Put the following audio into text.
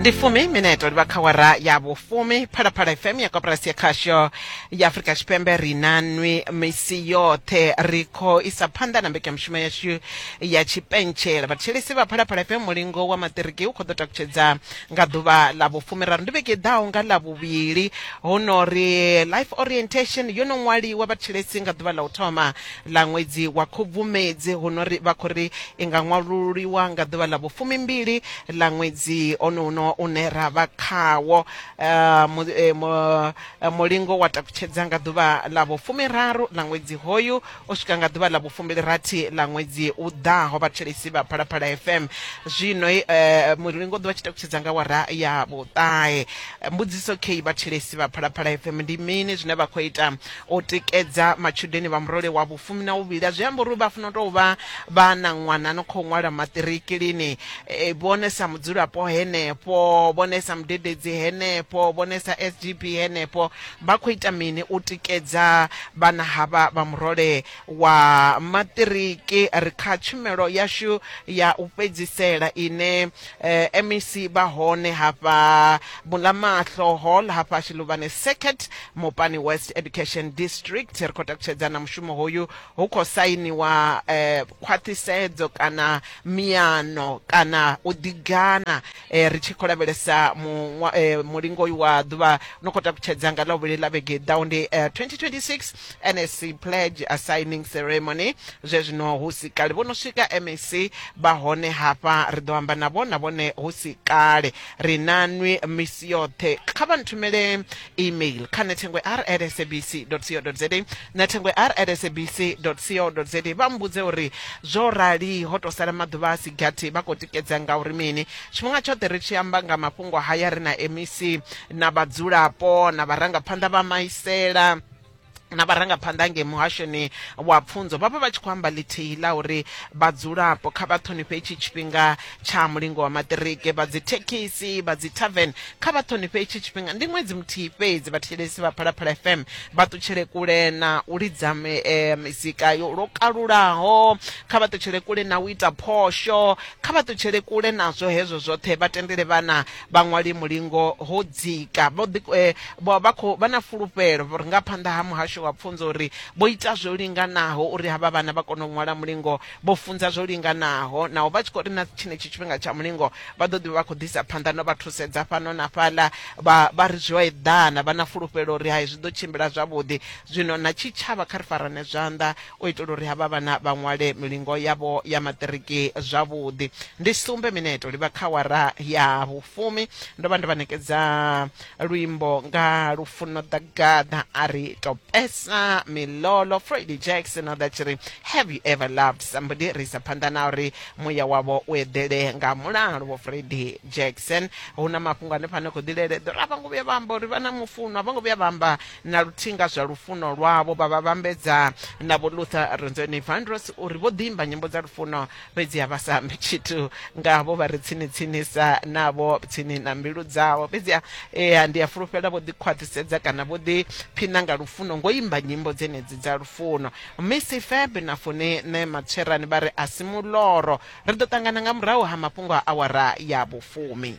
ndi fumi mineto ndi vakhawara ya vufumi phalaphala fm ya koporasi ya khasho ya afurika tshipembe ri na nwi misi yoṱhe ri khou isa phanḓa na mbekanyamushumo yashu ya tshipentshela vhathetshelesi vha phalaphala fm mulingo wa maṱiriki u khou ḓo takutshedza nga ḓuvha ḽa vhufumi raru ndi vhege i ḓaho nga ḽa vhuvhili hu no ri life orientation yo no ṅwaliwa vhathetshelesi nga ḓuvha ḽa u thoma ḽa ṅwedzi wa Khubvumedzi, hu no ri vha khou ri i nga ṅwalululiwa nga ḓuvha ḽa vhufumimbili ḽa ṅwedzi onounwo une ra vha khawo. Mulingo wa takutshedza nga ḓuvha ḽa vhufumiraru ḽa ṅwedzi hoyu u swika nga ḓuvha ḽa vhufumbilirathi ḽa ṅwedzi u ḓaho, vhathetshelesi vha Phalaphala FM. Zwino mulingo u ḓo vha tshi takutshedza nga awara ya vhuṱahe. Mbudziso kheyi vhathetshelesi vha Phalaphala FM, ndi mini zwine vha khou ita o tikedza matshudeni vha murole wa vhufumi na vhuvhili a zwi amba uri vha funa u tou vha vha na ṅwana no khou ṅwala maṱiriki lini e, vhone sa mudzulapo henefho vhone sa mudededzi henefho vhone sa sgb henefho vha khou ita mini u tikedza vhana havha vha murole wa maṱiriki ri kha tshumelo yashu ya u fhedzisela ine eh, MEC vha hone hafha Bulamaxlo Hall hafha Shiluvhane Circuit Mopani West Education District ri khou takutshedza na mushumo hoyu hu khou sainiwa eh, khwaṱhisedzo kana miano kana u ḓigana eh, ri tshi khou lavhelesa muṅwa- eh, mulingo uyu wa ḓuvha no khou takutshedza nga ḽa vhuvhili ḽa vhege i ḓaho ndi eh, 2026 NSC pledge assigning ceremony zwe zwino hu si kale vho no swika MEC vha hone hafha ri ḓo amba navho na vhone hu si kale ri na nwi misi yoṱhe kha vha nthumele email kha nethengwe r at sabc co za nethengwe r at sabc co za vha mbudze uri zwo rali ho to sala maḓuvha a si gathi vha khou tikedza nga uri mini tshifhinga tshoṱhe ri tshi amba nga mafhungo haya ri na MEC na vhadzulapo na vharangaphanḓa vha maisela na vharangaphanḓa nge muhashoni wa pfunzo vhavha vha tshi khou amba ḽithihi ḽa uri vhadzulapo kha vha ṱhonifhe itshi tshifhinga tsha mulingo wa maṱiriki vha dzi thekhisi vha dzi tavern kha vha ṱhonifhe itshi tshifhinga ndi ṅwedzi muthihi fhedzi vhathetshelesi vha phalaphala fm vha ṱutshele kule na u lidza eh, mizika yo lwo kalulaho kha vha ṱutshele kule na u ita phosho kha vha ṱutshele kule nazwo hezwo zwoṱhe vha tendele vhana vhaṅwali mulingo ho dzika vho ḓi eh, vho- vha khou vha na fulufhelo vho ri nga phanḓa ha muhasho wa pfunzo uri vho ita zwo linganaho uri havha vhana vha kone u ṅwala mulingo vho funza zwo linganaho naho vha tshi khou ri na tshenetshi tshifhinga tsha mulingo vha ḓo ḓi vha vha khou ḓisa phanḓa no vha thusedza fhano na fhaḽa vha vha ri zwo eḓana vha na fulufhelo uri hai zwi ḓo tshimbila zwavhuḓi zwino na tshitshavha kha ri farane zwanḓa u itela uri havha vhana vha ṅwale milingo yavho ya maṱiriki zwavhuḓi. Ndi sumbe mineto li vha kha awara ya vhufumi, ndo vha ndo vha ṋekedza luimbo nga Lufuno Ḓagaḓa a ri Topesa Milolo, Freddie Jackson o ḓa tshi ri Have you ever loved somebody? Ri isa phanḓa na uri muya wavho u eḓele nga mulalo vho Freddie Jackson. Hu na mafhungo hanefha no khou ḓi lele ḓora a vho ngo vhuya vha amba uri vha na mufunwa, a vho ngo vhuya vha amba na luthihi nga zwa lufuno lwavho vha vha vhambedza na vho luther renzoni vandros uri vho ḓimba nyimbo dza lufuno fhedzi ha vha sa ambi tshithu nga vho vha ri tsini tsinisa navho tsini na mbilu dzavho fhedzi ea ndi a fulufhela vho ḓikhwaṱhisedza kana vho ḓi phina nga lufuno ngo imba nyimbo dzenedzi dza lufuno misi feb na fune ne matsherani vha ri a si muloro ri ḓo ṱangana nga murahu ha mafhungo a awara ya vhufumi